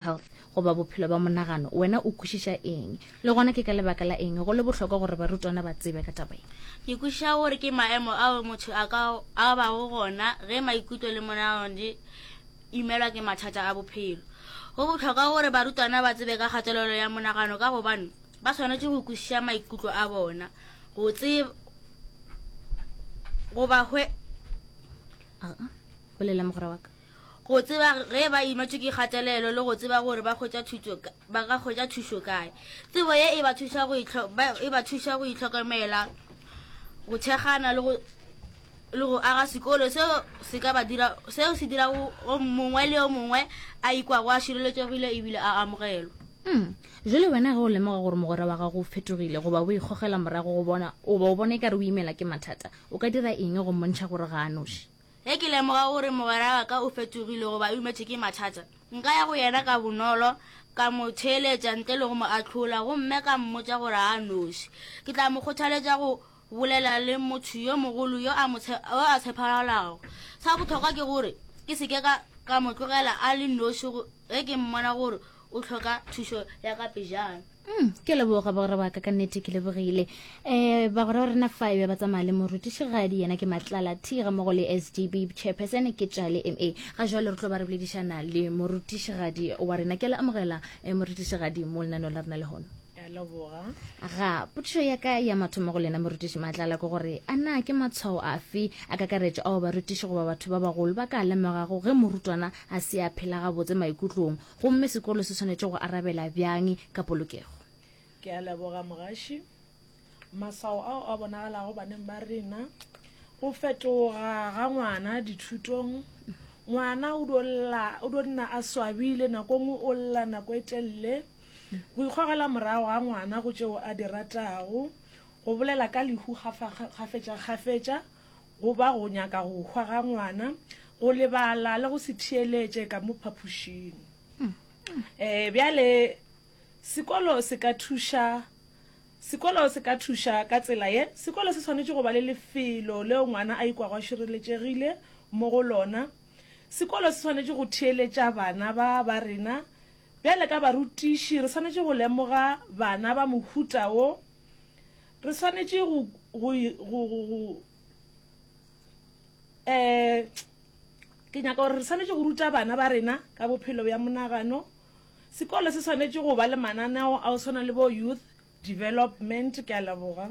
health goba bophelo ba monagano, wena o kwešiša eng, le gona ke ka lebaka la eng go le bohlokwa gore barutwana ba tsebe ka taba ye? Ke kwešiša gore ke maemo ao motho a ka a bago gona ge maikutlo le monagano di imelwa ke mathata a bophelo. Go bohlokwa gore barutwana ba tsebe ka kgatelelo ya monagano ka gobane ba swanetše go kwešiša maikutlo a bona go tseba goba hwe. Bolela mogwera wa ka. go tseba ge ba imetšwe ke kgatelelo le go tseba gore ba hwetša thušo ka- ba ka hwetša thušo kae tsebo ye e ba thuša go itlho- ba- e ba thuša go itlhokomela go thekgana le go le go aga sekolo seo se ka ba dira seo se dirago o mongwe le o mongwe a ikwago a šireletšegile ebile a amogelwa Mm. Jwale wena ge o lemoga gore mogwera wa gago o fetogile goba o ikgogela morago go bona goba o bona e ka re o imela ke mathata, o ka dira eng go mmontšha gore ga a noši? Ge ke lemoga gore mogwera wa ka o fetogile goba o imetšwe ke mathata, nka ya go yena ka bonolo, ka mo theeletša ntle le go mo ahlola gomme ka mmotša gore a noši. Ke tla mo kgothaletša go bolela le motho yo mogolo yo a tshepagalago. Sa bohlokwa ke gore ke se ke ka mo tlogela a le noši ge ke mmona gore o tlhoka thušo ya ka pejana Mm, ke leboga bagora ba ka ka nnete ke lebogile um bagora ba rena five ba tsamaya le morutišigadi yena ke matlala t ga mogo le s d b chairperson ke tšale m a ga jalo re tlo ba re boledišana le morutišigadi wa rena ke le amogela um morutišigadi mo lenaneo la rena le gono ya leboga ga potšišo ya ka ya mathomo go lena morutiši matlala ke gore a na ke matshwao afe a kakaretšo ao barutiši goba batho ba bagolo ba ka lemogago ge morutwana a se a phela gabotse maikutlong Gomme sekolo se swanetše go arabela bjang ka polokego? Ke a leboga, Mogaši. Maswao ao a bonagalago baneng ba rena, go fetoga ga ngwana dithutong. Ngwana o do lla, o do nna a swabile, nako e nngwe o lla nako e telele. Go ikgogela morago ga ngwana go tšeo a di ratago, go bolela ka lehu gafetša-gafetša, go ba go nyaka go hwa ga ngwana, go lebala le go se theeletše ka mo phapošing. E, bjale sekolo se ka thuša, sekolo se ka thuša ka tsela ye, sekolo se swanetše go ba le lefelo leo ngwana a ikwago a šireletšegile mo go lona. Sekolo se swanetše go theeletša bana ba ba rena. Bjale ka barutiši, re swanetše go lemoga bana ba mohuta wo, Re swanetše go, go, go, go, go eh, ke nyaka gore re swanetše go ruta bana ba rena ka bophelo bja monagano. Sekolo se swanetše go ba le mananeo a o swana le bo youth development. Ke a leboga.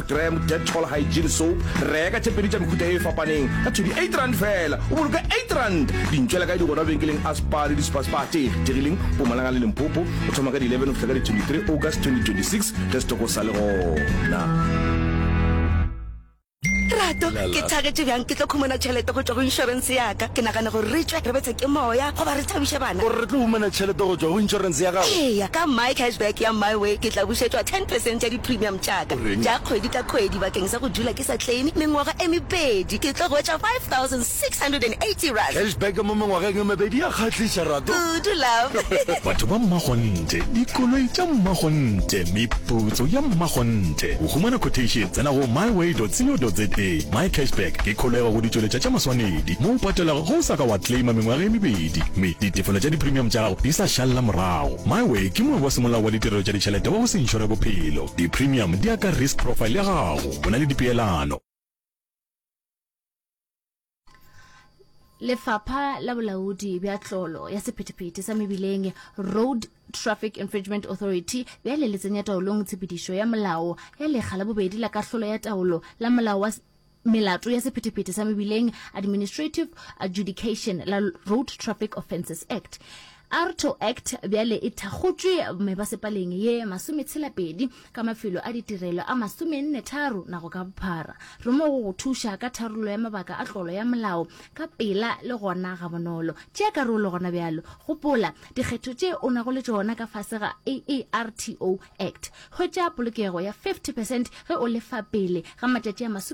Dram Dettol Hygiene Soap, reka tše pedi tša mehuta e fapaneng ka thudi R8 fela, o boloke R8. Di ntšwela kae di gona benkeleng a Spar le Dispar Spar tše kgethegileng Pumalanga le Limpopo, go thoma ka di 11 go fihla ka di 23 August 2026, ge setoko sa le gona. Rato, ke thagetše bjang ke tlo khumana tšhelete go tšwa go inšorense ya ka. Ke nagana gore re tšwe re betswe ke moya goba re thabiše bana. O re re tlo humana tšhelete go tšwa go inšorense ya gago? Eya, ka MyCashback ya MyWay ke tla bušetšwa ten percent ya di-premium. tša-ka tša kgwedi ka kgwedi bakeng sa go dula ke sa kleime mengwaga e mebedi, ke tlo hwetša R5,680. Cashback mo mengwageng e mebedi ya kgahliša, Rato. Kudu, love. Batho ba Mmakgonthe, dikoloi tša Mmakgonthe, meputso ya Mmakgonthe. Go humana quotation, tsena go myway.co.za. MyCashback ke kholego go ditšweletša tša maswanedi, mo o patelago ge o sa ka wa kleima mengwaga e mebedi. kgwedi, mme ditefelo tša diprimium tša gago di sa šalela morago. MiWay ke mongwe wa semolao wa ditirelo tša ditšhelete wa go se inšore bophelo. Diprimium di ya ka risk profile ya gago. Go na le dipeelano. Lefapha la Bolaodi bja Tlolo ya Sephethephethe sa Mebileng, Road Traffic Infringement Authority, bjale le tsenya taolong tshepedišo ya molao ya lekga la bobedi la kahlolo ya taolo la molao wa Melato ya Sephethephethe sa Mebileng, Administrative Adjudication, la Road Traffic Offences Act, ARTO Act, bjale e thakgotšwe mebasepaleng ye masometshela-pedi ka mafelo a ditirelo a masomenne-tharo nago ka bophara. Re mo go go thuša ka tharollo ya mabaka a tlolo ya molao ka pela le gona gabonolo. Tšea karolo gona bjalo. Gopola dikgetho tše o nago le tšona ka fase ga AARTO Act. Hwetša polokego ya 50 percent ge o lefa pele ga matšatši a masome